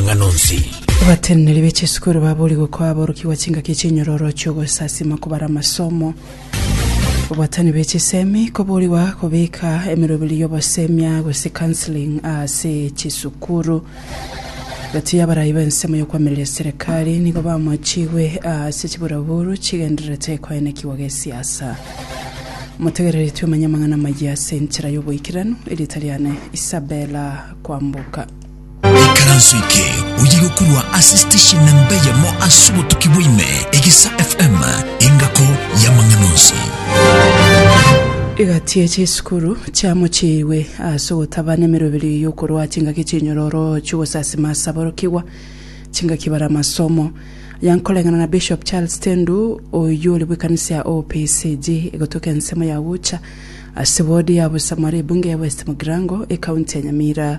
amang'ana onsi. Abateneneri be chisukuru baboorigwe koa aborokigwa chingaki chinyororo chi'ogosasima kobara amasomo. Obwatani bwe chisemi koboorigwa kobeka emeroberi y'obosemia gose counselling ase chisukuru. Egati y'abarai b'ensemo y'okwamireria eserekari nigo bamwachigwe ase chiburaburu chigendererete ekoenekigwa gesiasa. Motegereretwe omanye amang'ana amayia ase enchera y'oboikeranu, erieta riane Isabella Kwamboka. Ikaranso eke oye gokorwa ase station namba eyemo ase obotuki bwaime, Egesa FM, engako y'amang'ana onsi. Egati ya chisukuru chiamochiirwe ase ogotaba nemeroberi y'okorwa chingaki chinyororo chi'ogosasima ase aborokigwa, chingaki bare amasomo. Aya nkoreng'ana na Bishop Charles Tendu, oyio ore bw'ekanisa ya OPCG egotoka ensemo ya Ucha ase ward ya Busamora ebunge ya West Mugirango, ekaunti ya Nyamira.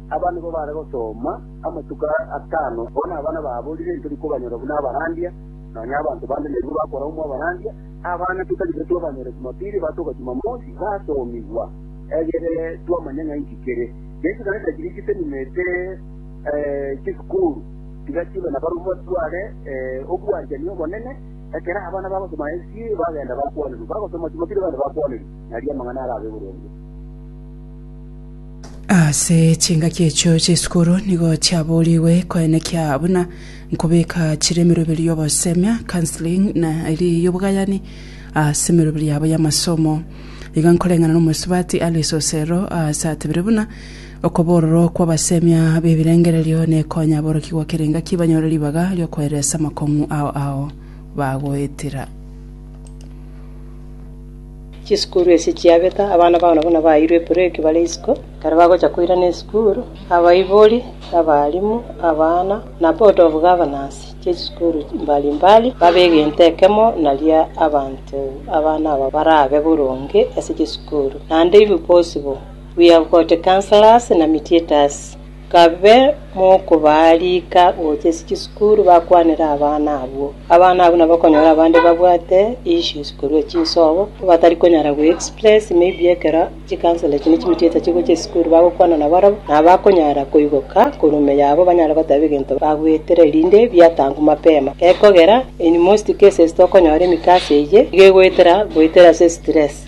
Aba nigo baare gosoma amatuko aya atano. Bono aba nababorire intori kobanyora buna abarandia, nonya abanto bande neribo bakoraumwa abarandia. Abana totari baito babanyore Jumapili batoka Jumamosi basomigwa, egere twamanye ng'a inki kere. Yeso nare tachire chiseminete, chisukuru, tiga chibe na barabwo batware obwanchani obonene. Ekero abana bagosoma SDA bagenda bakwanerwa, bagosoma Jumapili bagenda bakwanerwa. Naria amang'ana arabe boronge. Ase chingaki echio chisukuru nigo chiaboorigwe koenekia buna nkobeka chire emeroberio y'obosemia, counselling, na eria y'obogayani ase emeroberio yabo y'amasomo. Iga nkoreng'ana n'omosubati Alice Osero aase atebire buna okobororwa kw'abasemia b'ebirengererio nekonya aborokia goka erengaki banyore ribaga ri'okoeresa amakong'u ao ao bagoetera. Chisukuru echi chiabeta, abana bao nabana baeirwe ebureki bare isiko, ekero bagocha koirana esukuru, abaibori, na abalimu, abana, na board of governors chie chisukuru mbali mbali babe egento ekemo naria abanto abana aba barabe boronge ase chisukuru. Naende inwe bosibwo, we have got counsellors na mediators. Kabe mokobaa riika gocha ase chisukuru bakwanere abana abwo. Abana abwo nabo okonyora abande babwate issues korwa chinsobo, batari konyara go express maybe ekero chikansoro echi ne chimiticha chigocha esukuru bagokwana na barabwo, nabo bakonyara koigoka korwa ime yabo banyare goteba egento bagwetire erinde biatangwa mapema. Gekogera in most cases tokonyora emikasa eyio iga egoetera goetera ase stress.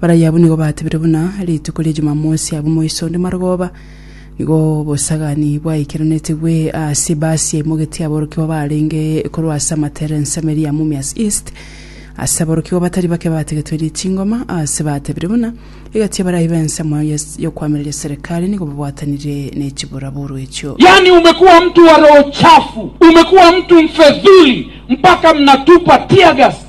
Barabwo abwo nigo batebire buna rituko ria Jumamosi abwo moiso onde Marogoba, nigo obosagani bwaikeranetigwe ase ebasi yaimogetie aborokigwa baarenge korwa ase amatere ensemeri ya Mumias East. Ase aborokigwa batari bake bategetwe richingoma ase batebire buna egati ya barayi b'ensemo ya y'okoamereria serikali nigo babwatanire ne chiburaburu echio. Yaani umekuwa mtu wa roho chafu, umekuwa mtu mfedhuli mpaka mnatupa teargas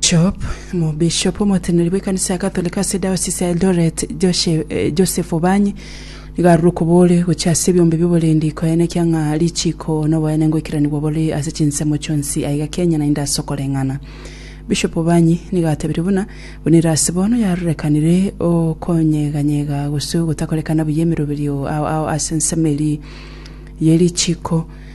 Job, Omobishop omoteneneri bw'ekanisa ya Catholic ase Diocese ya Eldoret, Joshe- eh, Joseph Obanyi, nigo arure okobore gochia ase ebiombe bi'oborendi koyanekia ng'a richiko noboene ngoikeranigwa bore ase chinsemo chionsi aiga Kenya naende ase okoreng'ana. Bishop Obanyi nigo atebirie buna, buna ere ase bono yarorekanire okonyeganyega gose ogotakorekana buya emeroberio ao ao ase ensemo eria ye richiko,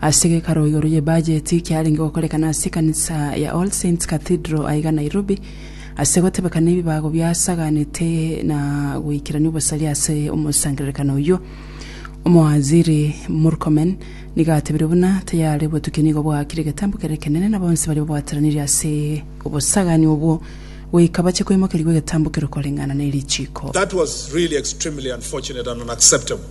Ase gekaro igoro ye bajeti kiarenge gokorekana ase ekanisa ya All Saints Cathedral aiga Nairobi, ase gotebekana ebibago biasaganete na goikerania obosaria ase omosangererekano oyio. Omowaziri Murkomen nigo atebirie buna tayare obotukia nigo bwakire egetambo kere ekenene na bonsi baria babwatanirie ase obosagani obwo goika bache koimokerigwa egetambo kere okoreng'ana ne richiiko. That was really extremely unfortunate and unacceptable.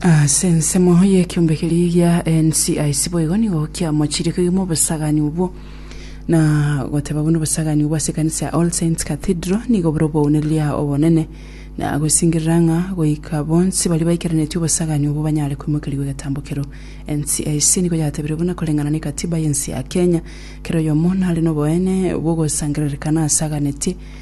Ase ensemo y'ekiombe keria gia NCIC boigo nigo kiamochirikigwe mobosagani obwo, na goteba buna obosagani obwo ase ekanisa ya All Saints Cathedral nigo bore obounereria obonene, na gosingerera ng'a goika bonsi baria baikeranetie obosagani obwo banyare koimokerigwa egetambo kereo. NCIC nigo yatebire buna koreng'ana n'Ekatiba y'ense ya Kenya, kera oyomo nare noboene bw'ogosangererekana asaganetie,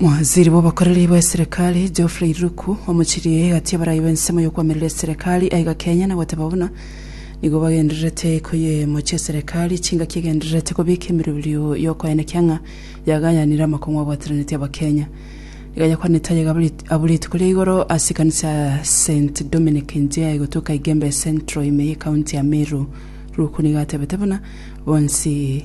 Mwanziri bw'obokoreri bw'eserekari Geoffrey Ruku omochirie egati abarai b'ensemo y'okwamerera eserekari aiga Kenya na goteba buna nigo bagendererete koyemochia eserekari chingaki egendererete kobika emeroberio y'okoenekia ng'a yagayanire amakong'u abwataneretie abakenya iga yakwanete aye abwo rituko ria igoro ase ekanisa ya St Dominic Njia egotuka Igembe Central ime y'ekaunti ya Meru Ruku nigo atebete buna bonsi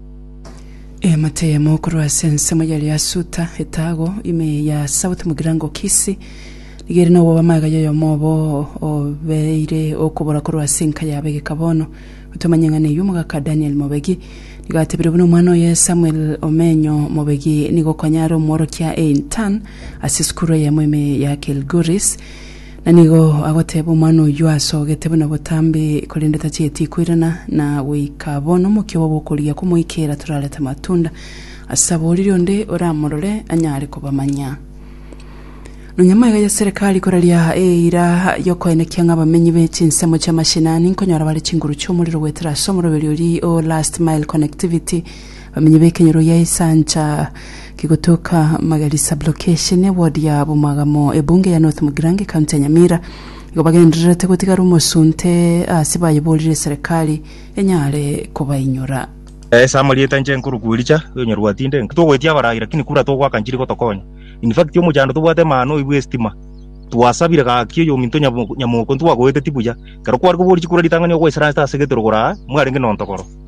Eamate eyemo korwa ase ensemo ya Leasuta, etago ime ya South Mugirango Kisii, nigo ere nobobamaga y'oyomo obo obeire okobora korwa ase enka ya abegeka bono. Gotomanya eng'ana eyio omogaka Daniel Mobegi nigo atebire buna omwana oye Samuel Omenyo Mobegi nigo konya are omworokia e Intan ase esukuru eyemo ime ya Kilgoris. Na nigo agoteeba omwana oyio asogete buna botambe, korende tachieti koirana, na goika bono omokia obo bw'okorigia komoikera torarete amatunda, ase abwo riria onde oramorore anyare kobamanya. Nonya amaiga ya serikali koraria eira y'okoenekia ng'a abamenyi be chinsemo chi'amashenani nkonyora bare chinguru chi'omorero goetera ase omoroberio oria o Last Mile Connectivity, Abamenyi b'ekenyoro gia Esancha kegotoka Magari Sub-Location, eward ya Bomagamo, ebunge ya North Mugirango, ekaunti ya Nyamira, igo bagendererete gotigara omosunte ase bayeborire serikali enyare kobainyora. Ase amarieta inche nkorwa Kuiricha, oonyorwa tinde nki togoetia abarai lakini kura togoaka nchiri gotokonya. In fact omochando tobwate maano oyi bw'estima, twasabire gaki oyominto Nyamoko ntwagoeteti buya, ekero kware koboria chikura ritang'ani ogoisaransete ase getorogoro aa mwarenge nontogoro.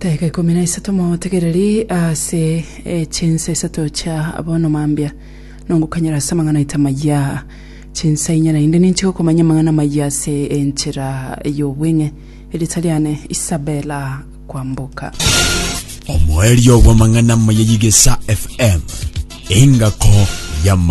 Dakika ikomi na isato motegereri ase chinsa isato chia bono mambia nongokanyera ase amang'ana aito amaya chinsa inya naende ninche gokomanya amang'ana amaya ase enchera y'obweng'e erita riane Isabella Kwamboka omoerio bw'amang'ana amaya y'igesa FM engako y'amang'ana